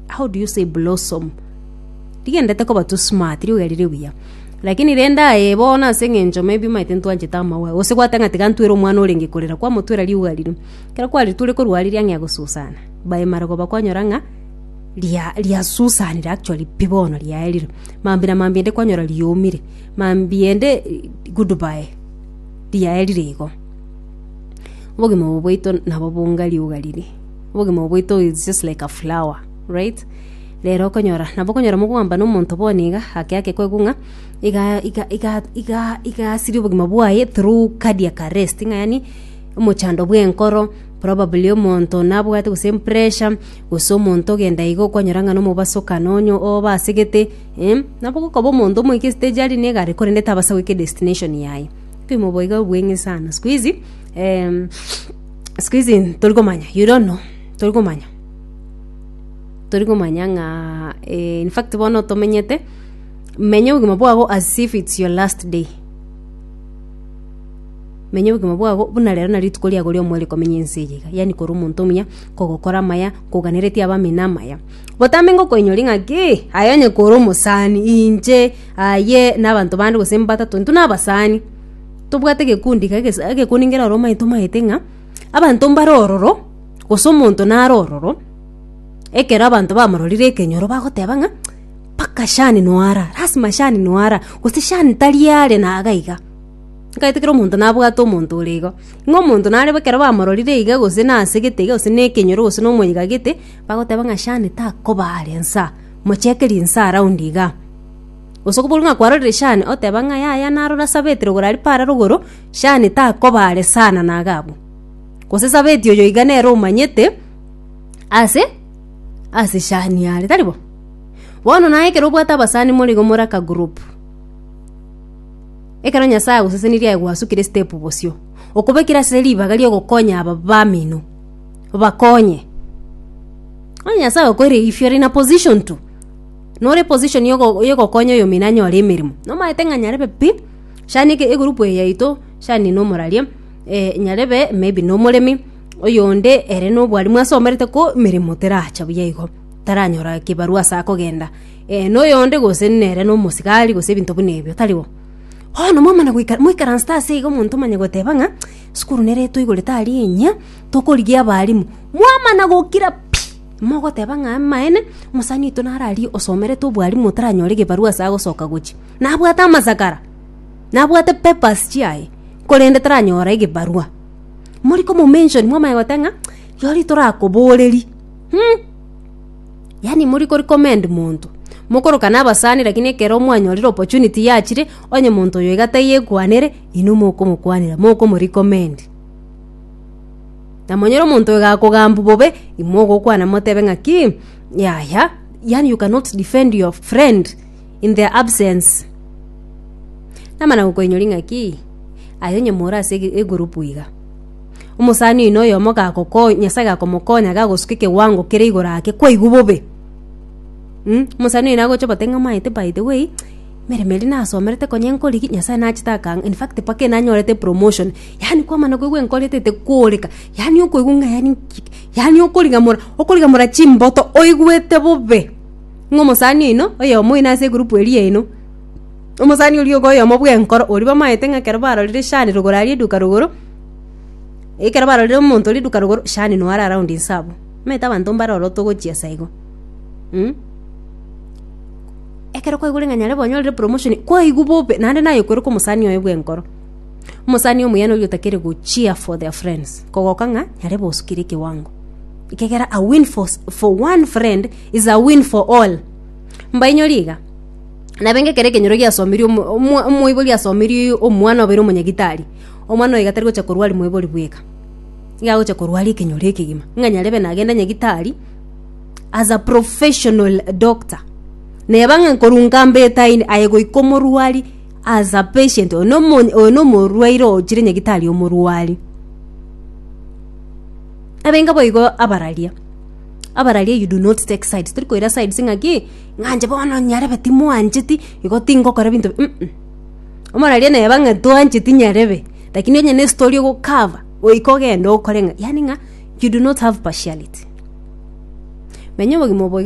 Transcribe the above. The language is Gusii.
how do you say blossom rigendete koba tu smart riuga rire buya lakini rende aye bono ase eng'encho maybe maete ntwanchete amawa gose gwateba ng'a tiga ntwere omwana orenge korera kwamotwera riuga riria ekero kwaritwire korwa riria ang'ea gosusana by marogoba kwanyora ng'a ria riasusanire actually pi bono riaerire mambia na mambia ende kwanyora riomire mambia ende good bye riaerire igo obogima obo bwaito nabo bonga riuga riria. Obogima obo bwaito is just like a flower, right? Rero okonyora, nabo okonyora mogwambana omonto bono iga, ake ake koigwa ng'a iga iga iga iga igasiria obogima bwaye through cardiac arrest, ng'a yaani omochando bw'enkoro, probably omonto nabwate gose empressure, gose omonto ogenda iga okwanyora ng'a nomobaso oka nonye oba asegete, eh, nabo okoba omonto omoike estage aria ne egari korende tabasa goika edestination yaye. Obogima obo iga obweng'e sana. Sikuizi, eeh. siku hizi tori komanya you don't know tori komanya tori komanya ng'a eh, in fact bono tomenyete menya obogima bwago as if it's your last day menya obogima bwago buna rero na rituko riago riomweri komenya ense eye iga yani kora omonto omuya kogokora amaya koganeretie abamina amaya botambe ngokoinyori ng'a ki aye onye kore omosani inche aye na abanto bande gose mbatato intwe na abasani Tobwate egekundi iga gesa egekundi ngero aro omanyete omanyete ng'a abanto mbare ororo gose omonto nare ororo ekero abanto bamororire ekenyoro bagoteba ng'a mpaka shani nwara lasima shani nwara gose shani tari are na iga iga. Ntagete kera omonto nabwate omonto ore igo, ng'a omonto nare bo ekero bamororire iga gose nasegete iga gose na ekenyoro gose na omoika gete bagoteba ng'a shani takoba are nsa mocheke rinsa around igaa. Gose koboru ng'a kwarorire Shani, oteba ng'a yaya narore ase Abetiri ogoro aria para rogoro, Shani takoba are sana na iga abwo. Gose ase Abeti oyo iga nere omanyete ase ase Shani are, tari bo? Bono naye ekero obwate abasani more igo more akagroup, ekero Nyasaye agosesenirie aye gwasukire step bosio, okobekire ase ribaga ria ogokonya aba bamino, obakonye. Onye Nyasaye okoeire if you're in a position to. nore position ya ogo- ya ogokonya oyomino anyore emeremo nomaete ng'a nyarebe pi shani eke egroup eye yaito shani nomoraria eh, nyarebe maybe nomoremi oyonde ere nobwarimu asomerete ko emeremo teracha buya igo taranyora kibarua ase akogenda eh, na oyonde gose nere na omosigari gose ebinto buna ebio tari bo bono momana goika moikaransete ase iga omonto omanye goteba ng'a esukuru nere etoigorete aria enyia tokorigia abarimu mwamana gokira pi. Mogoteba ng'a amaene, omosani oito naro aria osomerete obwarimu otaranyore egebarua ase agosoka gochia. Nabwate amasakara, nabwate papers chiaye, korende taranyora egebarua. Mori komomention mwamanya gote ng'a rirorio torakoboreri hmm. Yaani mori kori commend monto, mokorokana abasani lakini ekero mwanyorire opportunity yachire, onye monto oyo iga taiyo ekwanere, inwe mokomokwanera, mokomo recommend. Na monyere omonto oyo gakogambu bobe, imwe ogokwana motebe ng'aki, yaya, yani you cannot defend your friend in their absence. Namana gokoinyori ng'aki, aye onye more ase ege- egurupu iga. Omosani oino oyomo gagokonya, Nyasae gakomokonya gagosuka ekewango kere igoro ake kwaigwa bobe. Mh, omosani oino agocha obote ng'a omaete by the way, emeremo eria nasomerete konya nkorigia, Nyasae nachete akangaa, in fact mpaka enanyorete promotion, yaani kwamana koigwa enkorete tekoreka yaani okoigwa ng'a yaani nkite yaani okorigamora okorigamora chimboto oigwete bobe ng'a omosani oino oyomo oino ase egurupu eria yaino omosani oria ogo oyomo bwenkoro oria bamaete ng'a ekero barorire shani rogoro aria eduka rogoro ekero barorire omonto oria eduka rogoro shani noyo are around inse abwo omanyete abanto mbare ororo togochia sa igo ekero kwaigure ng'a nyare bonya orire promotion kwaigwa bobe naende naye okoerekwa omosani oye bwenkoro. Omosani omuyani oria otakere go cheer for their friends kogoka ng'a nyare bosukire ekewango. Ekegera a win for, s- for one friend is a win for all. Mbainyori iga. Nabenge ekero ekenyoro giasomirie omo- omo- omoibori asomirie omwana obeire omonyagitari, omwana oiga tari gocha korwari moibori bweka, iga agocha korwari ekenyoro ekegima ng'a nyarebe nagende nyagitari as a professional doctor. Neba ng'a nkorwa nkambe etaini aye goika omorwari As a patient, oyo nomo- oyo nomorwaire ogochire nyagitari omorwari. Abenga boigo abararia, abararia you do not take sides, tori koira sides ng'a ki, ng'a inche bono nyarebe timwancheti, igo tingokora ebinto bi- mm, omoraria neba ng'a twancheti nyarebe, lakini onye ne story ogokaba, goika ogende okore ng'a, yani ng'a you do not have partiality. Menya obogima obo iga.